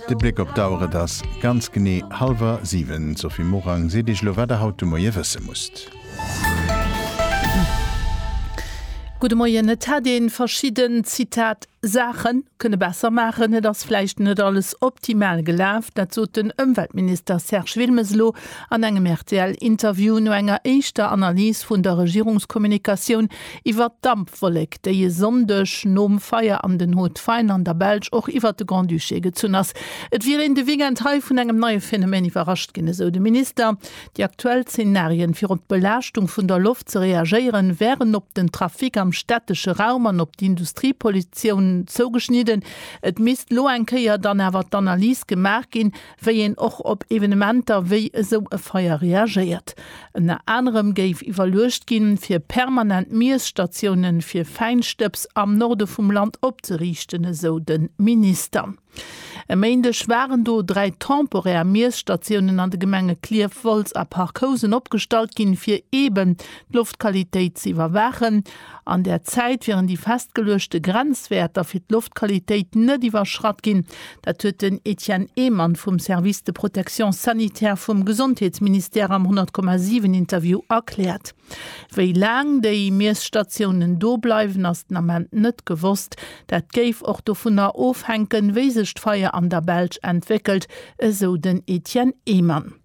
De Bléck op d'Auer, et ass ganz genee hallwer siwen. D'Sophie Morang seet Iech elo wat der haut de Moie wësse musst. Gudde Moien. Et hätt ee verschidden, Zitat, Saache kënne besser maachen. Et ass vläicht net alles optimal gelaf. Dat sot den Ëmweltminister Serge Wilmes elo an engem RTL-Interview no enger éischter Analys vun der Regierungskommunikatioun, Iwwert d'Dampwollek, déi e Sonndeg nom Feier am Den Haut Fain an der Belsch och iwwert de Grand-Duché gezunn ass. Et wier een de Weekend hei vun engem neie Phänomen iwwerrascht ginn, esou de Minister. Déi aktuell Zenarien, fir op d'Belaaschtung vun der Loft ze reagéieren, wären op den Trafic am stättesche Raum an op d'Industriepollutioun zougeschnidden. Et misst elo eng Kéier dann awer d'Analys gemaach ginn, wéi een och op Evenementer wéi esou e Feier reagéiert. Ënner anerem géif iwwerluecht ginn, fir permanent Miesstatioune fir Fäinstëbs am Norde vum Land opzeriichten, esou de Minister. E Méindeg waren do dräi temporär Miesstatiounen an de Gemenge Klierf, Wolz a Parc Housen opgestallt ginn, fir eeben d'Loftqualitéit ze iwwerwaachen. An där Zäit wieren déi festgeluechte Grenzwäerter fir d'Loftqualitéit net iwwerschratt ginn. Dat huet den Etienne Ehmann vum Service de protection sanitaire vum Gesondheetsministère am 100,7 Interview erkläert. Wéi laang déi Miesstatiounen do bleiwen, ass den Ament net gewosst. Dat géif och dovunner ofhänken, wéi sech d'Feier an der Belsch entwéckelt, esou den Etienne Ehmann.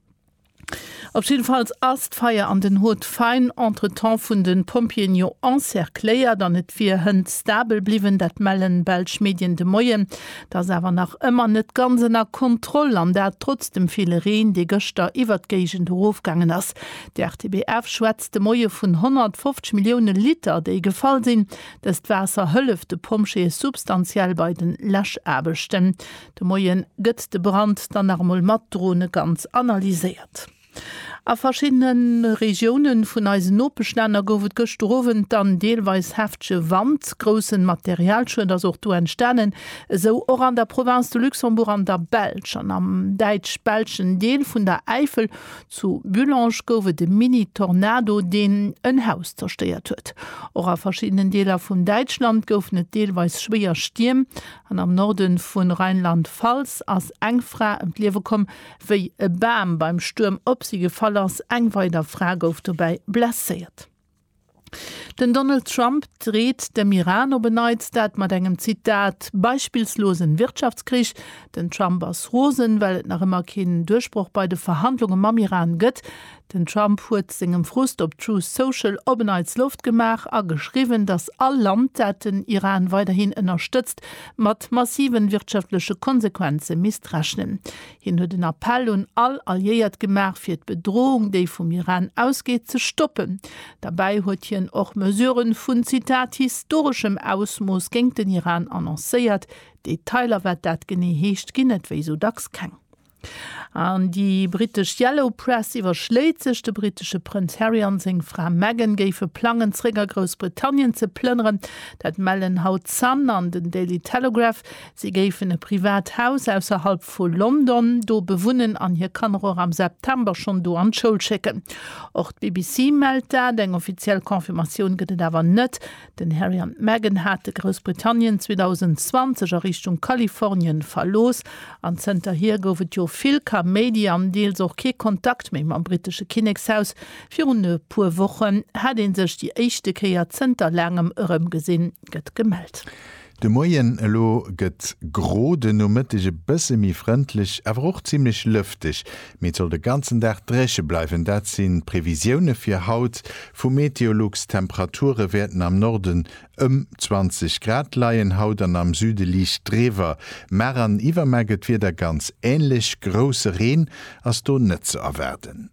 Op jiddefalls ass d'Feier an den Haute Faïne entretemps vun de Pompjeeën jo encercléiert an et wier Hënt stabel bliwwen. Dat mellen belsch Medien de Moien. Et ass awer nach ëmmer net ganz ënner Kontroll an dat trotz dem ville Reen, dee gëschter iwwert d'Géigend erofgaangen ass. De RTBF schwätzt de Moie vun 150 Millioune Liter, déi gefall sinn. Dëst Waasser hëlleft de Pompjeeë substantiell bei de Läschaarbechten. De Moien gëtt de Brand dann nach emol mat Drone ganz analyséiert. A verschiddene Regioune vun eisen Nopeschlänner gouf et gëschter Owend dann deelweis heftege Wand. Groussen Materialschued ass och do entstanen, esou och an der Province de Luxembourg an der Belsch. An am däitsch-belschen Deel vun der Äifel, zu Bullange, gouf et e Mini-Tornado, deen en Haus zerstéiert huet. Och a verschiddenen Deeler vun Däitschland goufen et deelweis schwéier Stierm. An am Norde vu Rheinland-Pfalz ass eng Fra ëm d'Liewe komm, wéi e Bam beim Stuerm op si gefall ass. Eng weider Fra gouf dobäi blesséiert. Den Donald Trump dreet dem Iran op en Neits dat mat engem, Zitat, beispillslosen Wirtschaftskrich. Den Trump ass rosen, well et nach ëmmer keen Duerchbroch bei de Verhandlunge mam Iran gëtt. Den Trump huet sengem Frust op Truth Social op en Neits Loft gemaach a geschriwwen, datt all Land, dat den Iran weiderhin ënnerstëtzt, mat massive wirtschaftleche Konsequenze misst rechnen. Hien huet en Appell un all Alliéiert gemaach, fir d'Bedrohung, déi vum Iran ausgeet, ze stoppen. Derbäi huet hien och Mesurë vun, Zitat, historeschem Ausmooss géingt den Iran annoncéiert. Detailer, wat dat genee heescht, ginn et wéi esou dacks keng. An déi brittesch Yellow Press iwwerschléit sech, de brittesche Prënz Harry an seng Fra Meghan géife plangen, zeréck a Groussbritannien ze plënneren. Dat mellen haut Sun an den Daily Telegraph. Si géifen e privat Haus ausserhalb vu London do bewunnen an hir Kanner och am September schonn do an d'Schoul schécken. Och d'BBC mellt dat. Eng offiziell Confirmatioun gëtt et awer net. Den Harry an d'Meghan hate Groussbritannien 2020 a Richtung Kalifornien verlooss an zënterhier gouf et jo vill Kaméidi an deels och kee Kontakt méi mam brittesche Kinnekshaus. Virun e puer Wochen hat ee sech déi éischte Kéier zënter laangem erëmgesinn, gëtt gemellt. De Moien elo gëtt gro, de Nomëtteg e bësse méi frëndlech, awer och zimmlech lëfteg, mee et soll de ganzen Dag dréche bleiwen. Dat sinn d'Previsioune fir haut vu Meteolux. D'Temperature wäerten am Norden ëm 20 Grad leien haut an am Süde liicht driwwer. Mar an Iwwermar gëtt d'Wieder ganz änlech, grousse Reen ass do net ze erwaarden.